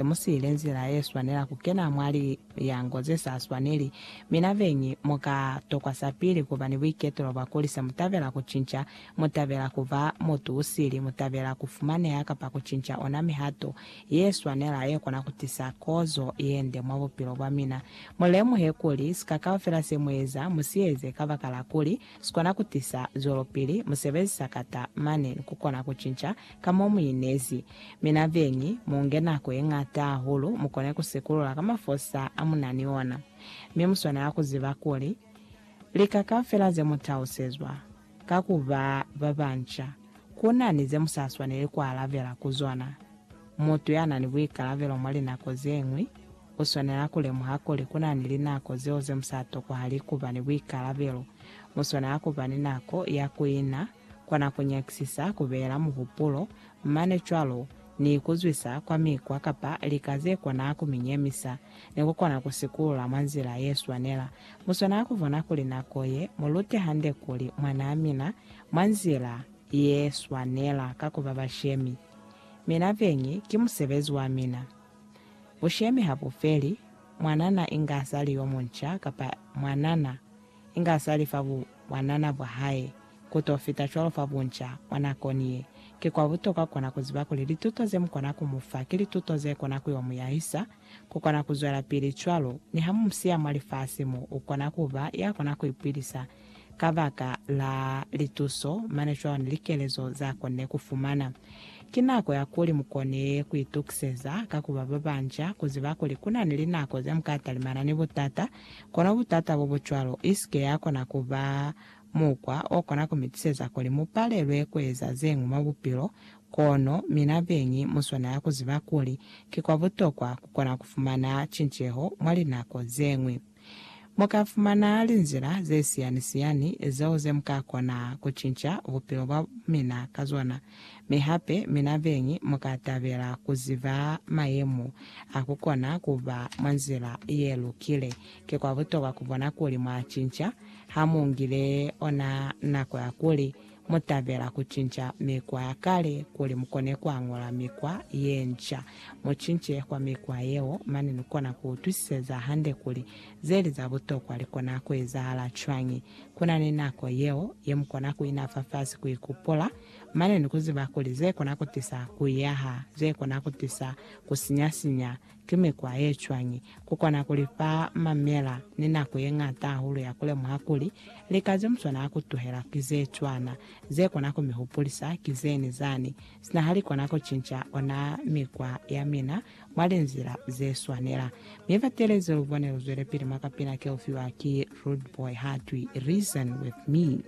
se mu siile nzila ye swanela ku kena mwa liyango ze sa swaneli. Mi na beñi mu ka tokwa sapili ku ba ni buiketulo bwa kuli se mu tabela ku cinca, mu tabela ku ba mutu u sili, mu tabela ku fumaneha kapa ku cinca ona mihato ye swanela ye kona ku tisa kozo ye nde mwa bupilo bwa mina. Mu lemuhe kuli, sika kaufela se mu eza, mu si eze kabakala kuli Sikona kutisa zwelopili musebezi sakata mane nikukona kucinca ka mo muinezi. Mi na beñi, munge nako yeñata hahulu mukone kusikulula ka mafosa amunani ona. Mi muswanela kuziba kuli, lika kaufela zemutausezwa ka kuba babanca, kunani zemusaswaneli kualabela ku zona. Mutu yanani buikalabelo mwa linako zeñwi U swanela ku lemuha kuli ku na ni linako zeo ze mu sa tokohali ku ba ni buikalabelo. Mu swanela ku ba ni nako ya ku ina kona ku nyakisisa, ku beela muhupulo, mane cwalo ni ku zwisa kwa mikwa kapa lika ze kona ku mi nyemisa, ni ku kona ku sikulula mwa nzila ye swanela. Mu swanela ku bona kuli nako ye mu lute hande kuli mwanaa mina mwa nzila ye swanela ka ku ba bashemi. Mina beñi ki musebezi wa mina. Bushemi ha bu feli, mwanana inge a sa li yo munca kapa mwanana inge a sa li fa bu bwanana bwa hae ku to fita cwalo fa bunca mwa nakoni ye. Ki kwa butokwa ku kona ku ziba kuli lituto ze mu kona ku mu fa ki lituto ze kona ku yo mu yahisa ku kona ku zwelapili cwalo. Niha mu mu siya mwa lifasi mo, u kona ku ba ya kona ku ipilisa Kabaka la lituso, mane cwalo ni likelezo za konile kufumana. Ki nako ya kuli mukone kuitukiseza ka kuba babanca, kuziba kuli kuna ni linako zemuka talimana ni butata, kono butata bobucwalo isike yakona kuba mukwa okona kumitiseza kuli mupalelwe kueza zeñwi mwa bupilo, kono mina beñi muswanela kuziba kuli ki kwa butokwa kukona kufumana cinceho mwa linako zeñwi. Mu ka fumana linzila ze siyani-siyani zeo ze mu ka kona ku cinca bupilo bwa mina ka zona. Mi hape mina beñi mu ka tabela ku ziba mayemo a ku kona ku ba mwa nzila ye lukile. Ki kwa butokwa ku bona kuli mwa cinca ha mu ngile ona nako ya kuli Mu tabela ku cinca mikwa ya kale kuli mu kone ku añula mikwa ye nca. Mu cince kwa mikwa yeo, mane ni kona ku utwisiseza hande kuli ze li za butokwa li kona ku ezahala cwañi. Ku na ni nako yeo ye mu kona ku ina fafasi ku ikupula, mane ni ku ziba kuli ze kona ku tisa ku yaha, ze kona ku tisa ku sinya-sinya, Ki mikwa ye cwañi ku kona ku li fa mamela ni nako ye ñata hahulu ya ku lemuha kuli lika ze mu swanela ku tuhela ki ze cwana, ze kona ku mi hupulisa ki zeni zani, sina ha li kona ku cinca ona mikwa ya mina mwa linzila ze swanela? Mi batelezi lu bone lu zwelepili mwa kapina ke u fiwa ki Rudeboy ha twi Reason With Me.